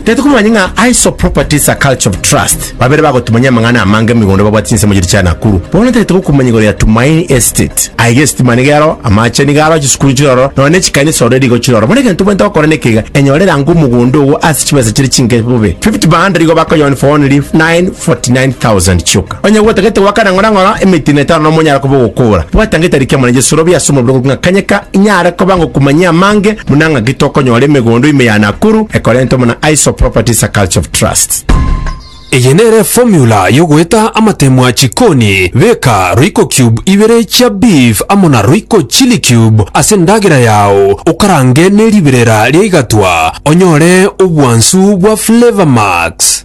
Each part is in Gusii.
Tete kumanya ng'a ISO Properties a Culture of Trust babere bagotumanyia amang'ana amange emigondo babwate chinsemo chiria chia Nakuru. Bono tagete gokumanya igoro ya Tumaini Estate. Aiga esitima nigo ero, amache nigo aro, chisukuru chire ororo, nonya ne chikanisa ororo erigo chire ororo. Bono egento obwenerete gokora nekeiga, enyore rango omogondo ogo ase chibesa chiria chinke bobe. Fifty by hundred igo bakoyoa 149 49,000 chioka. Onye gwotagete goakana ng'orang'ora emetino etano na omonyara koba ogokora, bwata ngetari kia mwana Jesu robi ase omobere ogo ng'a kanyeka inyare koba ngokumanyia amange buna ng'aki tokonyora emegondo ime ya Nakuru ekorentwe mo na Aiso Properties a Culture of Trust. Eye nere eformula yogoeta amatemwa a chikoni, beka royco cube ibere chia beef amo na royco chilli cube ase endagera yao, okarange neribirera riaigatwa onyore obwansu bwa flavour max.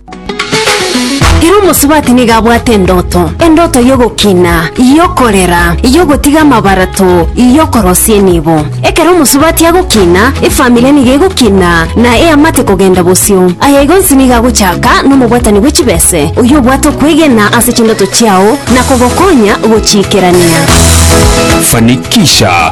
Ere omosubati nigo abwate endoto, endoto y'ogokina, y'okorera, y'ogotiga amabarato, y'okorosia enibo. Ekero omosubati agokina, efamiri nigo egokina na eamate kogenda bosio. Aya igo onsi nigo agochaka nomobwatani bwe chibese, oyio obwate okwegena ase chindoto chiao na kogokonya gochiikerania. Fanikisha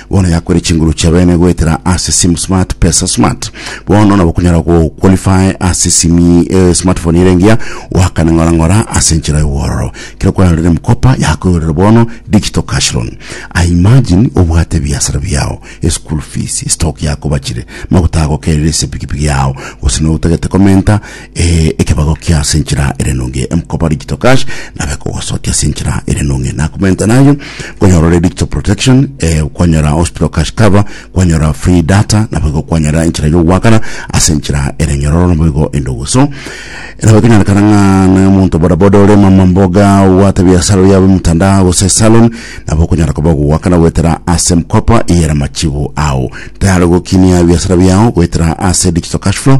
Bono yakwere chinguru chia bene goetera ase simu smart pesa smart bono nabo kunyara go qualify ase simi eh, smartphone ere engiya wakane ng'ora ng'ora ase enchera y'obwororo kero kwarorire mkopa yakoyorera bono digital cash loan I imagine obwate ebiasara biao school fees stock yakobachire maguta agokerire ase pikipiki yao gose notagete komenta Ee, ekebagokia ase enchera ere enonge, emkoba digital cash, nabe kogosokia ase enchera ere enonge. Nakomenta nayo, konyorore digital protection, eh, kwanyora hospital cash cover, kwanyora free data, nabo igo kwanyora enchera yogoakana ase enchera ere enyororo, nabo igo endogo. So, nabo ekenyarekana ng'a na omonto bodaboda ore mama mboga obwate biasara oria bwe mtandao gose salon, nabo okonyara koba ogogoakana goetera ase emkopa eye ere amachibu ao. Tayari gokinia ebiasara biao goetera ase digital cash flow,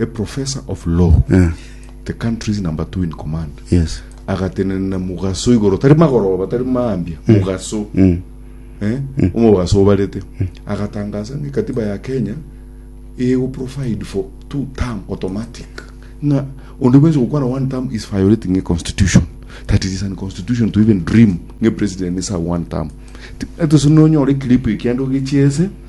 a professor of law, Eh. the country's number two in command, Yes. agatenena mugaso igoro tari magoroba tari maambia mugaso Mm. eh, omogaso obarete agatangaza ng'a katiba ya kenya ego provide for two term automatic ng'a onde bwensi gokwana one term is violating a constitution that it is an constitution to even dream ng'a president is a one term etosinonyore clip ekiando gechiese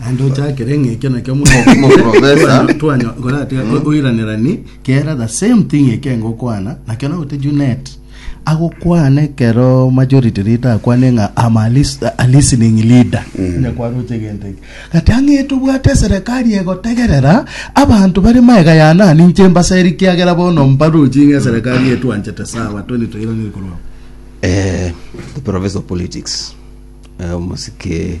naende ochakere ng'a ekio nakio Moprofesa. twanyokoratiga oiranerani kera the same thing eke ngokwana nakio nagote junet agokwana ekero majority leader akwane ng'a am a lis- a listening leader onye kwaroche egento eke gati ang'ete obwate eserekari egotegerera abanto bare maega ya nani inche mbaseri kiagera bono mbarochi ng'a eserekari etwanchete sawa tweni toiraneria korwa abo Eh, the professor of politics eh, omosike